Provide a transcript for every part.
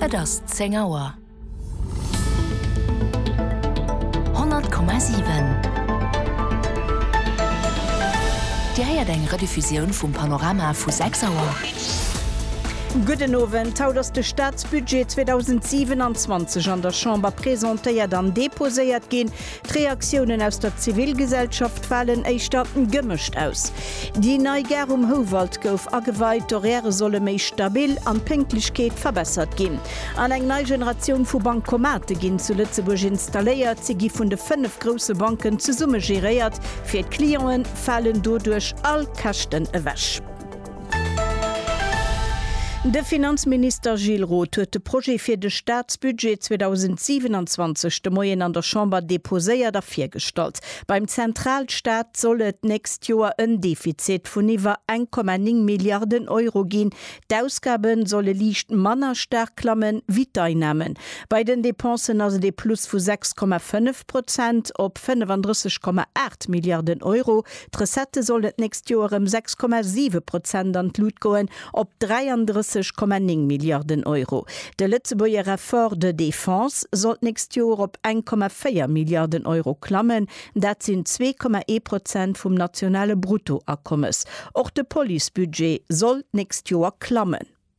Et ass 10 Auer. 100,7 Dir héiert eng Rediffusioun vum Panorama vu 6 Auer. Gudden Owend. Haut ass de Staatsbudget 2027 an der Chamber presentéiert an deposéiert ginn. D'Reaktiounen aus der Zivilgesellschaft falen éischter gemëscht aus. Déi nei Gare um Houwald gouf ageweit, d'Horairë solle méi stabil an d'Pénktlechkeet verbessert ginn. An eng nei Generatioun vu Bankomate ginn zu Lëtzebuerg installéiert. Si gi vun de fënnef grousse Banken zesumme geréiert. Fir d'Clienten falen doduerch all Käschten ewech. De Finanzminister Gilles Roth huet de Projet fir de Staatsbudget 2027 de Moien an der Chamber deposéiert a virgestallt. Beim Zentralstaat soll et d'nächst Joer en Defizit vun iwwer 1,9 Milliarden Euro ginn. D'Ausgabe solle liicht manner staark klammen, wéi d'Einnamen. Bei den Depensen ass et ee Plus vu 6,5 Prozent op 35,8 Milliarden Euro. D'Recettë sollen d'nächst Joer ëm 6,7 Prozent an d'Lut goen, op 33,9 Milliarden Euro. De Lëtzebuerger Effort de défense soll d'nächst Joer op 1,4 Milliarden Euro klammen, dat sinn 2,1 Prozent vum nationale Bruttoakommes. Och de Policebudget soll d'nächst Joer klammen.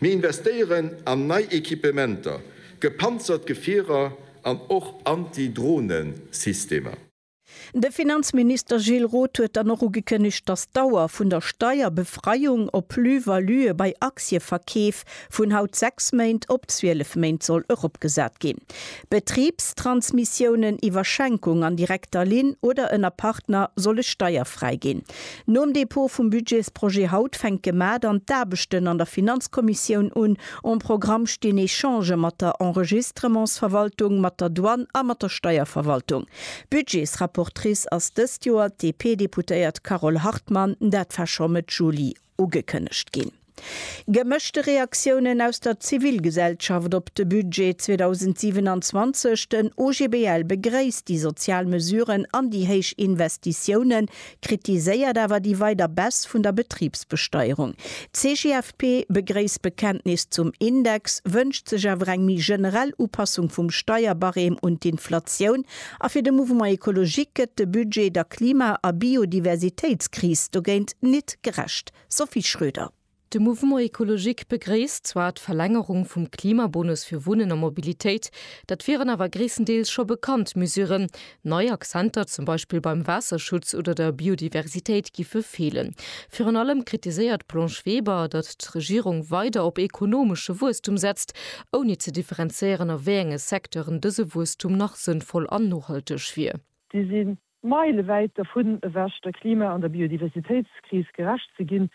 Mir investéieren an nei Equipementer, gepanzert Gefierer an och Anti-Drohnen-Systemer. De Finanzminister Gilles Roth huet dann och ugekënnegt, datt d'Dauer vun der Steierbefreiung op Plus-valuë bei Aktieverkeef vun haut 6 Méint op 12 Méint soll eropgesat ginn. Betribstransmissiounen iwwer Schenkung an direkter Linn oder ënner Partner solle steierfräi ginn. Nom Dépôt vum Budgetsprojet haut fänke d'Ma dann d'Aarbechten an der Finanzkommissioun un. Am Programm stinn Echangë mat der Enregistrementsverwaltung, mat der Douane a mat der Steierverwaltung. Budgetsrapportrice ass dëst Joer d'DP-Deputéiert Carole Hartmann, dat war scho Mëtt Juli. Ugekënnegt ginn gemëschte Reaktiounen aus der Zivilgesellschaft op de Budget 2027. Den OGBL begréisst déi sozial Mesuren an déi héich Investitiounen, kritiséiert awer déi weider Baisse vun der Betribsbesteierung. D'CGFP begréisst d'Bekenntnis zum Index, wënscht sech awer eng méi generell Upassung vum Steierbarème un d'Inflatioun A fir de Mouvement Ecologique gëtt de Budget der Klima a Biodiversitéitskris dogéint nit gerecht. Sophie Schröder. De Mouvement Ecologique begréisst zwar d'Verlängerung vum Klimabonus fir Wunnen a Mobilitéit, dat wieren awer gréisstendeels scho bekannt Mesuren. Nei Akzenter, zum Beispill beim Waasserschutz oder der Biodiversitéit, giffe feelen. Virun allem kritiséiert d'Blanche Weber, datt d'Regierung weider op ekonomesche Wuesstum setzt ouni ze differenzéieren a wéi enge Secteuren dëse Wuesstum nach sënnvoll an nohalteg wier. Si si meilewäit dervun ewech, der Klima an der Biodiversitéitskris gerecht ze ginn.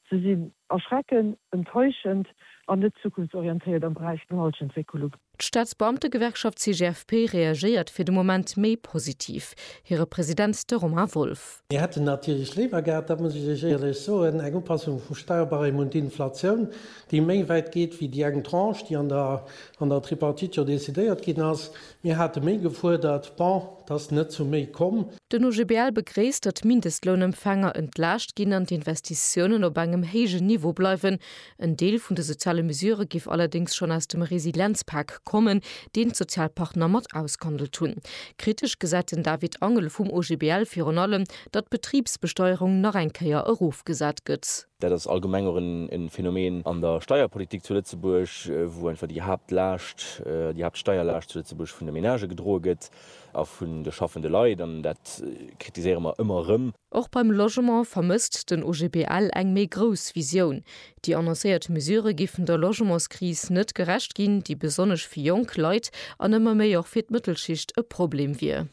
Se sinn erschreckend, enttäuschend an net zukunftsorientéiert am Beräich Nohaltegentwécklung. D'Staatsbeamtegewerkschaft CGFP reagéiert fir de Moment méi positiv. Hire President, de Romain Wolff. Mir hätten natierlech léiwer gehat, dat muss ech Iech éierlech soen, eng Upassung vum Steuerbarème un d'Inflatioun. déi méi wäit geet wéi déi eng Tranche, déi an der Tripartite jo decidéiert ginn ass. Mir hate méi gefuerdert. Bon, et ass net zu méi komm. Den OGBL begréisst, datt d'Mindestlounempfänger entlaascht ginn an d'Investitiounen op engem héijen Niveau bleiwen. En Deel vun de soziale Mesurë géif allerdéngs schonn aus dem Resilienzpak kommen, deen d'Sozialpartner mat ausgehandelt hunn. Kritesch gesäit den David Angel vum OGBL virun allem, datt d'Betribsbesteuerung nach eng Kéier erofgesat gëtt. Dat ass allgemeng och e Phänomen an der Steierpolitik zu Lëtzebuerg, wou einfach déi Haaptlaascht, déi Haaptsteierlaascht zu Lëtzebuerg vun de Menagë gedroe gëtt a vun de schaffende Leit. An dat kritiséiere mer ëmmer erëm. Och beim Logement vermësst den OGBL eng méi grouss Visioun. Déi annoncéiert Mesure géifen der Logementskris net gerecht ginn, déi besonnesch fir jonk Leit an ëmmer méi och fir d'Mëttelschicht e Problem wier.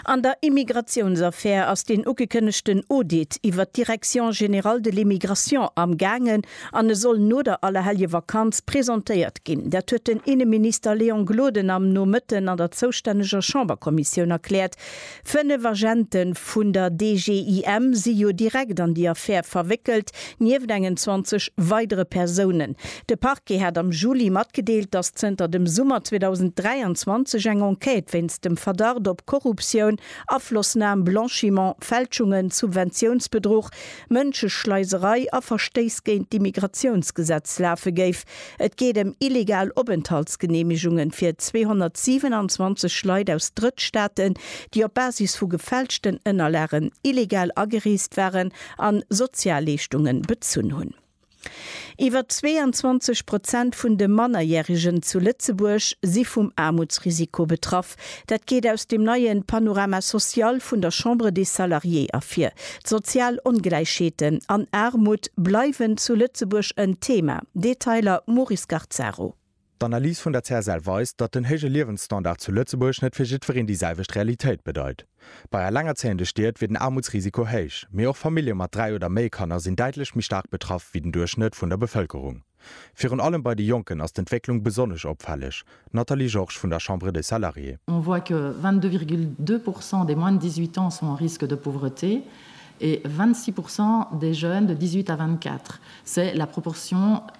An der Immigratiounsaffär ass deen ugekënnegten Audit iwwert d'Direction générale de l'immigration am gaangen an e soll no der Allerhelljevakanz presentéiert ginn. Dat huet den Inneminister Léon Gloden am Nomëtten an der zoustänneger Chamberkommissioun erkläert. Fënnef Agente vun der DGIM si jo direkt an déi Affär verwéckelt, Nieft engen 20 weidere Persounen. De Parquet hat am Juli matgedeelt, datt zënter dem Summer 2023 eng Enquête wéinst dem Verdacht op Korruptioun, Aflossnam, Blanchiment, Fälschungen, Subventiounsbedruch, Mënscheschleiserei a Verstéiss géint d'Immigratiounsgesetz lafe géif. Et geet ëm illegal Openthaltsgeneemegungen fir 227 Leit aus Drëttstaaten, déi op Basis vu gefälschten Ënnerlagen illegal agereest waren a Sozialleeschtunge bezunn hunn. Iwwer 22 Prozent vun de Mannerjärigen zu Lëtzebuerg si vum Aarmutsrisiko betraff. Dat geet aus dem neie Panorama social vun der Chambre des Salariés ervir. D'sozial Ongläichheeten an Aarmut bleiwen zu Lëtzebuerg en Thema. Detailer Maurice Garcaro. D'Analys vun der CSL weist, datt den héije Liewensstandard zu Lëtzebuerg net fir jiddwereen déi selwecht Realitéit bedeit. Bei elengerzéiende Stied wier den Aarmutsrisiko héich, mee och Famillje mat dräi oder méi Kanner sinn däitlech méi staark betraff wéi den Duerchschnëtt vun der Bevëlkerung. Virun allem bei de Jonken ass d'Entwécklung besonnesch opfälleg. Nathalie Georges vun der Chambre des Salariés. On voit que 22,2 pourcent des moins de 18 ans sont en risque de pauvreté et 26 pourcent des jeunes de 18 à 24. C'est la proportion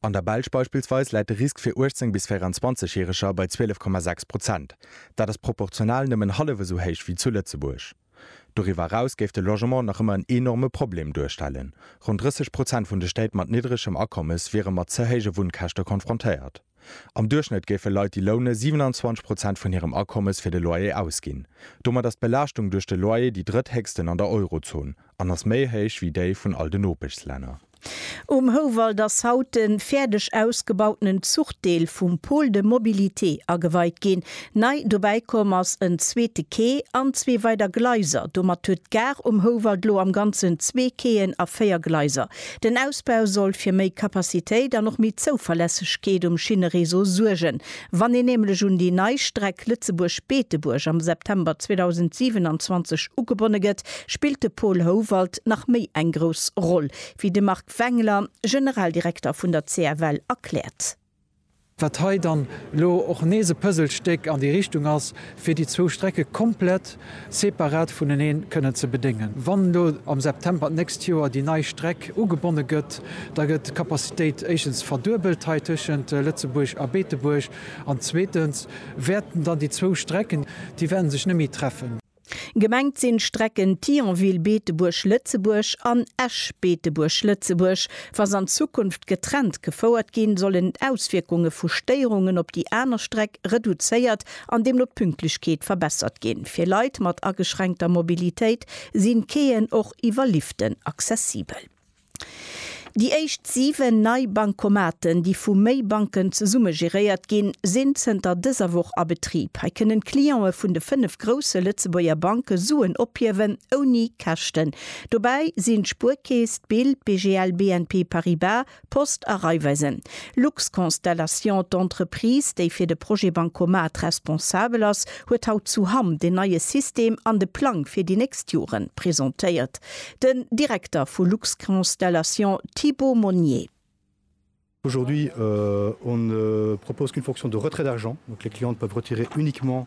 An der Belsch beispillsweis läit de Risk fir 18 bis 24 Järeger bei 12,6 Prozent. Dat ass proportional nëmmen hallef esou héich wéi zu Lëtzebuerg. Doriwwer eraus géif de Logement nach ëmmer en enorme Problem duerstellen. Ronn 30 Prozent vun de Stéit mat niddregem Akommes wiere mat ze héije Wunnkäschte konfrontéiert. Am Duerchschnëtt géife Leit déi loune 27 Prozent vun hirem Akommes fir de Loyer ausginn. Domat ass d'Belaaschtung duerch de Loyer déi drëtthéchsten an der Eurozon an ass méi héich wéi déi vun all de Nopeschslänner. Um Houwald ass haut de fäerdeg ausgebautenen Zuchdeel vum Pôle de mobilité ageweit ginn. Nei dobäi komm ass en zweete Quai an zwee weider Gleiser. Domat huet d'Gare um Houwald lo am Ganzen zwee Quaien a véier Gleiser. Den Ausbau soll fir méi Capacitéit an och méi Zouverlässegkeet um Schinnereseau suergen. Wann een nämlech un déi nei Streck Lëtzebuerg-Beetebuerg am September 2027 ugebonne gëtt, spillt de Paul Howald nach méi eng grouss Roll, wéi de Marc Wengler, Generaldirekter vun der CFL, erkläert. Wat hei dann elo och nees e Puzzlestéck an déi Richtung ass, fir déi zwou Strecke komplett separat vuneneen kënnen ze bedéngen. Wann elo am September d'nächst Joer déi nei Streck ugebonne gëtt, da gëtt d'Capacitéit éischtens verduebelt hei tëschent Lëtzebuerg a Beetebuerg an zweetens wäerten dann déi zwou Strecken, déi wäerte sech net méi treffen. Gemengt sinn d'Strecken Thionville, Beetebuerg, Lëtzebuerg an Esch, Beetebuerg, Lëtzebuerg. Wa se an Zukunft getrennt gefouert ginn, sollen d'Auswierkunge vu Stéierungen op déi aner Streck reduzéiert an deemno d'Pünktlechkeet verbessert ginn. Fir Leit mat ageschränkter Mobilitéit sinn d'Quaien och iwwer Liften accessibel. Déi éischt 7 nei Bancomaten, déi vu méi Banken zesumme geréiert ginn, sinn zënter dëser Woch a Betrib. Hei kënnen d'Clientë vun de 5 grousse Lëtzebuerger Banke Suen ophiewen, ouni Käschten. Dobäi sinn d'Spuerkeess, d'Bild, d'BGL, BNP Paribas, Post a Raiffeisen, Luxconstellation, d'Entreprise, déi fir de Projet Bancomat responsabel ass, huet haut zu Hamm den neie System an de Plang fir déi nächst Jore presentéiert. Den Direkter vu Luxconstellation, Thibaut Monnier. Aujourd'hui, on ne propose qu'une fonction de retrait d'argent, donc les clients peuvent retirer uniquement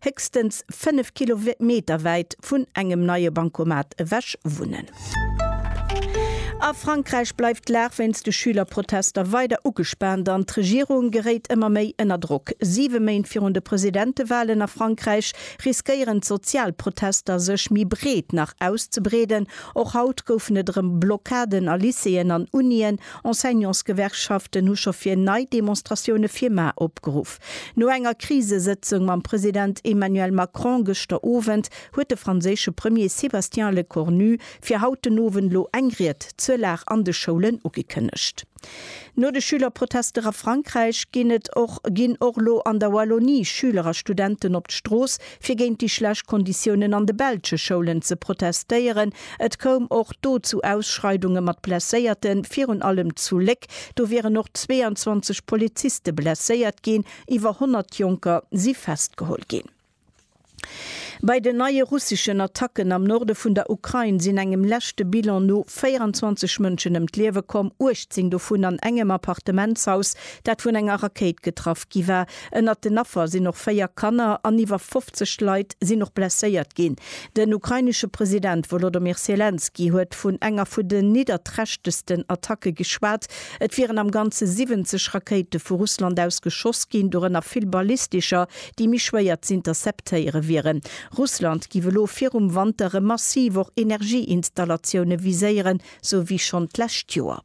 héchstens 5 Kilometer wäit vun engem neie Bancomat ewech wunnen. A Frankräich bleift d'Lag wéinst de Schülerprotester weider ugespaant an d'Regierung geréit ëmmer méi ënner Drock. Siwe Méint virun de Presidentewalen a Frankräich riskéieren d'sozial Protester sech méi breet nach auszebreeden. Och haut goufen et erëm Blockaden a Lycéeën an Unien. Enseignantsgewerkschaften hu scho fir nei Demonstratioune fir mar opgeruff. No enger Krisesëtzung mam President Emmanuel Macron gëschter Owend huet de franséische Premier Sébastien Lecornu fir haut den Owend lo eng Ried zur Lag an de Schoulen ugekënnegt. No de Schülerprotester a Frankräich ginn et och ginn och lo an der Wallonie Schüler a Studenten op d'Strooss fir géint déi schlecht Konditiounen an de belsche Schoulen ze protestéieren. Et koum och do zu Ausschreidunge mat Blesséierte virun allem zu Léck. Attack. Do wieren och 22 Poliziste blesséiert ginn, iwwer 100 Jonker si festgeholl ginn. Bei den neie russeschen Attacken am Norde vun der Ukrain sinn engem leschte Bilan no 24 Mënschen ëm d'Liewe komm, 18 dovun an engem Appartementshaus, dat vun enger Rakéit getraff gi war. Ënnert den Affer sinn och véier Kanner an iwwer 50 Leit sinn och blesséiert ginn. Den ukrainesche President Wolodomyr Selenskyj huet vun enger vun den nidderträchtegsten Attacke geschwat. Et wieren am Ganze 70 Rakéite vu Russland aus geschoss ginn, dorënner vill ballistescher, déi méi schwéier z'interceptéiere wieren. Russland géif elo virum Wanter erëm massiv och Energieinstallatioune viséieren, sou wéi schonn d'lescht Joer.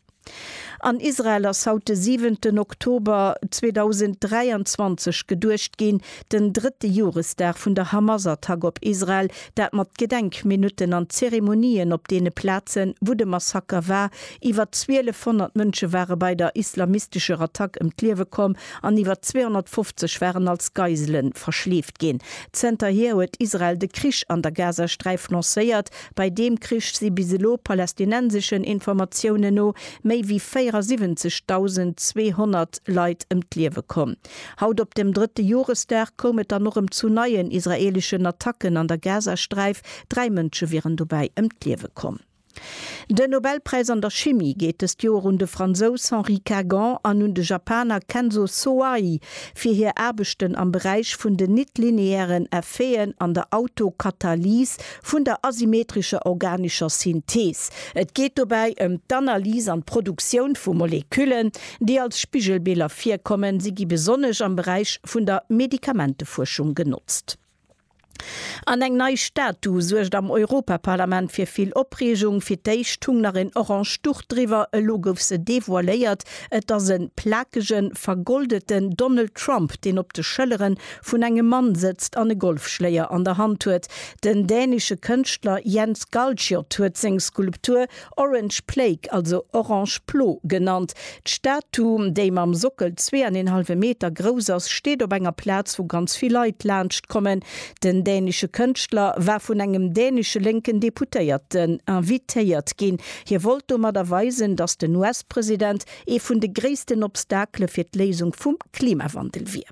An Israel ass haut de siwenten Oktober 2023 geduecht ginn, den drëtte Joresdag vun der Hamas-Attack op Israel, dat mat Gedenkminutten an Zeremonien op deene Plazen, wou de Massaker war. Iwwer 1.200 Mënsche ware bei der islamistescher Attack ëm d'Liewe komm an iwwer 250 waren als Geisele verschleeft ginn. Zënterhier huet Israel de Krich an der Gazasträif lancéiert, Bei deem Krich si bis elo, palästinenseschen Informatiounen no, méi wéi 74.200 Leit ëm d'Liewe komm. Haut op dem drëtte Joresdag koum et dann och ëm zu neien israeeleschen Attacken an der Gazasträif, dräi Mënsche wieren dobäi ëm d'Liewe komm. Den Nobelpräis an der Chimie geet dëst Joer un de Fransous Henri Kagan an un de Japaner Kenzo Soai fir hir Aarbechten am Beräich vun den nit-lineären Effeten an der Autokatalys, Vun der asymmetrescher organescher Synthees. Et geet dobäi ëm d'Analys an d'Produktioun vu Moleküllen, déi als Spigelbiller virkommen. Si gi besonnesch am Beräich vun der Medikamentefuerschung genotzt. An eng nei Statu suergt am Europaparlament fir vill Opreegung. Fir d'éischt hung nach en orange Duch driwwer, elo gouf se devoiléiert. Et ass e plakegen, vergoldeten Donald Trump, deen op de Schëllere vun engem Mann sëtzt an e Golfschléier an der Hand huet. Den dänesche Kënschtler Jens Galschiot huet seng Skulptur Orange Plague, also Orange Plo genannt. D'Statu, déi mam Sockel zwee an een hallwe Meter grouss ass, steet op enger Plaz, wou ganz vill Leit laanscht kommen. Den dänesche Kënschtler war vun engem dänesche lénken Deputéierten invitéiert ginn. Hie wollt domadder weisen, datt den US-President ee vun de gréissten Obstakele fir d'Léisung vum Klimawandel wier.